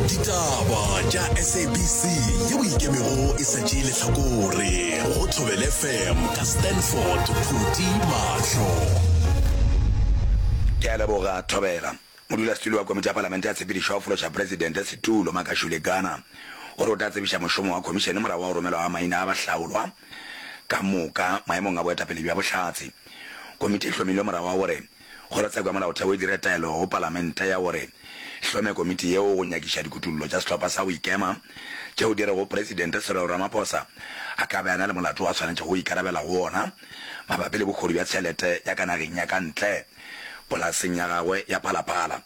ditaba tša sabc ye o ikemego e sa tšee lehlakore go tlhobele fm ka stanford phuti mahlo ke a leboga thobela modulasetulo wa komiti ya palamente ya tshepedišo ya go fološa presidente setulo makashule gana o re o tla tsebiša mošomo wa khomišene morago wa go romelwa ga maina a bahlaolwa ka moka maemong a boetapele bja bohlatse komiti e hlomilwe morago wa gore Kgorotsheko ya Molaotheo e dire taelo go Palamente ya gore e hlome komiti yeo go nyakiša dikutullo tša sehlopha sa go ikema tšeo di rego Presidente Cyril Ramaphosa a ka be a na le molato wo a swanetšego go ikarabela go wona mabapi le bogodu bja tšhelete ya ka nageng ya ka ntle polaseng ya gagwe ya Phala Phala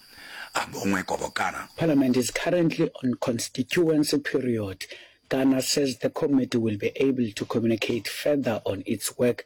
a Bongwe Kobokana. Parliament is currently on constituency period, Kana says the committee will be able to communicate further on its work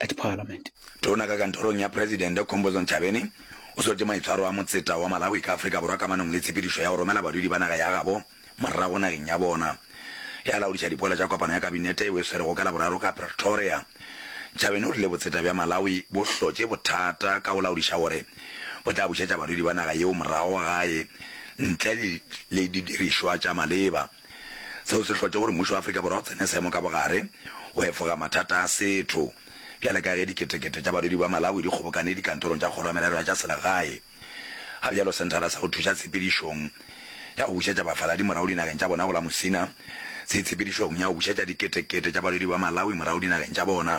at Parliament. Tona ka kantorong ya Presidente Khombozon Chabeni o sotše maitshwaro a motseta wa Malawi ka Afrika Borwa kamanong le tshepedišo ya go romela badudi ba naga ya gabo morago nageng ya bona. Ge a laodiša dipoelo tša kopano ya kabinete yeo e swerego ka Laboraro ka Pretoria, Chabeni o rile botseta bja Malawi bo hlotše bothata ka go laodiša gore bo tla bušetša badudi ba naga yeo morago gae ntle le didirišwa tša maleba. Seo se hlotše gore mmušo wa Afrika Borwa o tsene seemo ka bogare go efoga mathata a setho, bjale ka ge diketekete tša badudi ba Malawi di kgobokane dikantorong tša Kgoro ya Merero ya tša Selegae, ga bjalo Senthara sa go Thuša Tshepedišong ya go Bušetša Bafaladi Morago Dinageng tša Bona go la Musina se itshepedišong ya go bušetša diketekete tša badudi ba Malawi morago dinageng tša bona.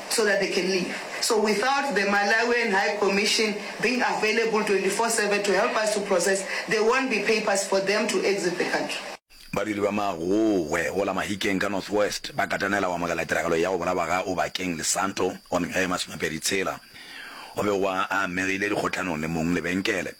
so that they can leave. So without the Malawian High Commission being available 24-7 to help us to process, there won't be papers for them to exit the country. Badiri ba Magogwe go la Mahikeng ka North West ba katanela go amogela tiragalo ya go bolawa ga Obakeng Lesanto wa mengwaga ye masomepedi tshela. O be wa a amegile dikgohlanong le mong lebenkele.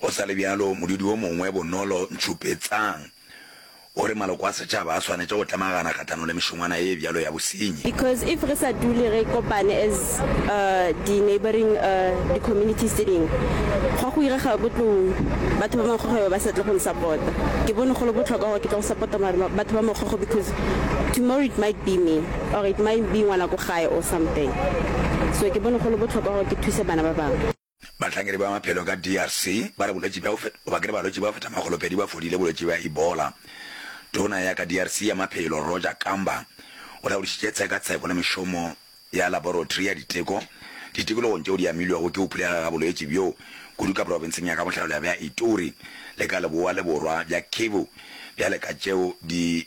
Go sa le bjalo, modudi wo mongwe, Bonolo Ntšhupetsang, o re maloko a setšhaba a swanetše go tlemagana kgahlanong le mešongwana ye bjalo ya bosenyi. Because if re sa dule re kopane as di neighbouring di communities tše dingwe, gwa go irega botlou, batho ba Mokgokgo ba sa tle go nsapota. Ke bone go le bohlokwa gore ke tle go sapota batho ba Mokgokgo because tomorrow it might be me. or it might be ngwana ko gae or something so ke bone go le bohlokwa gore ke thuse bana ba bangwe. Bahlankedi ba maphelo ka DRC ba re bolwetši bja go bakile balwetši ba feta makgolo pedi ba fodile bolwetši bja Ebola. Tona ya ka DRC ya maphelo Roger Kamba o laodišitše tshekatsheko le mešomo ya laboratory ya diteko ditikologong tšeo di amilwego ke go phulega ga bolwetši bjo kudu ka profenseng ya ka bohlabela bja Ituri le ka leboa le borwa bja Kivu bjale ka tšeo di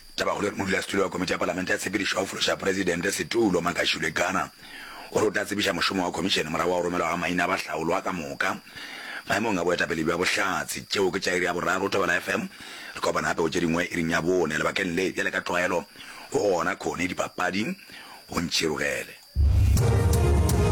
Tabakgolo ya modulasetulo wa Komiti ya Palamente ya Tshepedišo ya go Fološa Presidente setulo, Makashule Gana, o re o tla tsebiša mošomo wa Khomišene morago ga go romelwa ga maina a bahlaolwa ka moka maemong a boetapele bja bohlatse. Tšeo ke tša iri ya boraro. Thobela FM, re kopana gape go tše dingwe iring ya bone. Lebakeng le, bjale ka tlwaelo, go gona Connie dipapading. O ntšhirogele.